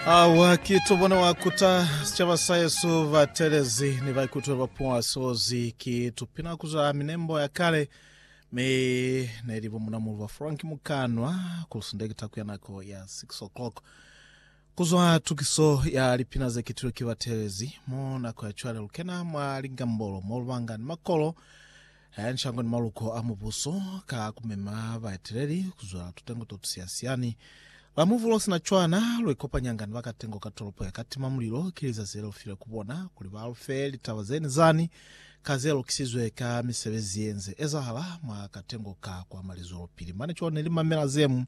Awa ki tobona wa kuta sicaba sa Yesu batelezi ni baikutwe ba puwa sozi ki tupina kuza minembo ya kale mi ne li bomunamulu ba Frank Mukanwa ku sindekita kuya nako ya 6 o'clock kuzwa tukiso ya lipina ze kitilwe ki batelezi mo nako ya cwale lukena mwa ligambolo mo lubanga ni makolo Ha ya nshangoni maluko a mubuso ka kumema baeteleli kuzwa tutengo to tusiyasiyani. La muvulo sina cwana, luikopanyanga ni bakatengo ka tolopo ya Katima Mulilo. Ki lizazi lelufile ku bona kuli balufe litaba zeni zani ka zelukisizwe ka misebezi yenze ezahala mwa katengo ka kwa Malizwelopili. Mane cwalo neli mamela zemu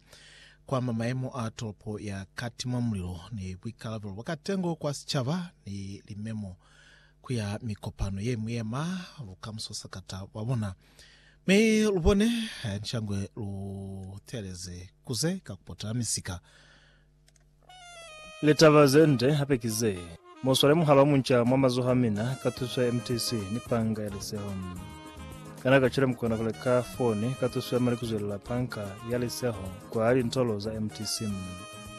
kwama mayemo a tolopo ya Katima Mulilo ni buikalabelo bwa katengo kwa sicaba ni limemo ku ya mikopano ye mi yema lu ka mu sosa ka ta ba bona. Mi lu bone ncangwe lu teeleze ku ze ka ku potela misika. Litaba ze nde hape ki ze, Mu swale muhaba munca mwa mazoho a mina ka tuso ya MTC ni Panga ya Liseho. Kana kacwale mu kona ku leka foni ka tuso ya mali ku zwelela Panga ya Liseho kwa lintolo za MTC?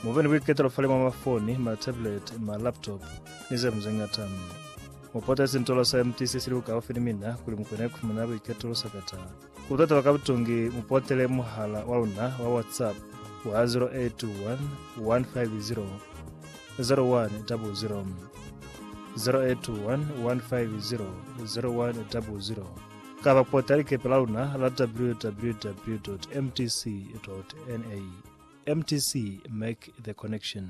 Mu be ni buiketelo fale mwa mafoni, matablet, malaptop, ni ze ñwi ze ñata. Mu potezi ntolo sa empty se si li bukaufi ni mina kuli mu kone ku fumana buiketulo sa ka ta. Ku tataba ka butungi, mu potele muhala wa luna wa WhatsApp wa 0821 500. 0821 500 0100 kaba ku potela likepe la luna la www.mtc.na. Mtc, Make the Connection.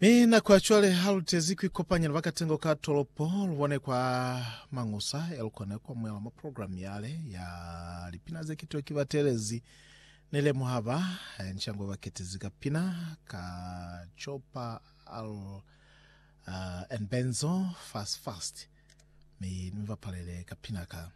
Mi na kwa cwale ha lu tezi ku ikopanya ni bakatengo ka tolopo, lu bone kwa Mangusa, e lu kone ku amuhela mwa programu yale ya lipina ze kitiwa ki batelezi. Ni lemuha ba nshangwe ba ketezi ka pina ka Chopper Al uh, and Benzo Fast Fast, mi ni mi bapalele ka pina ka.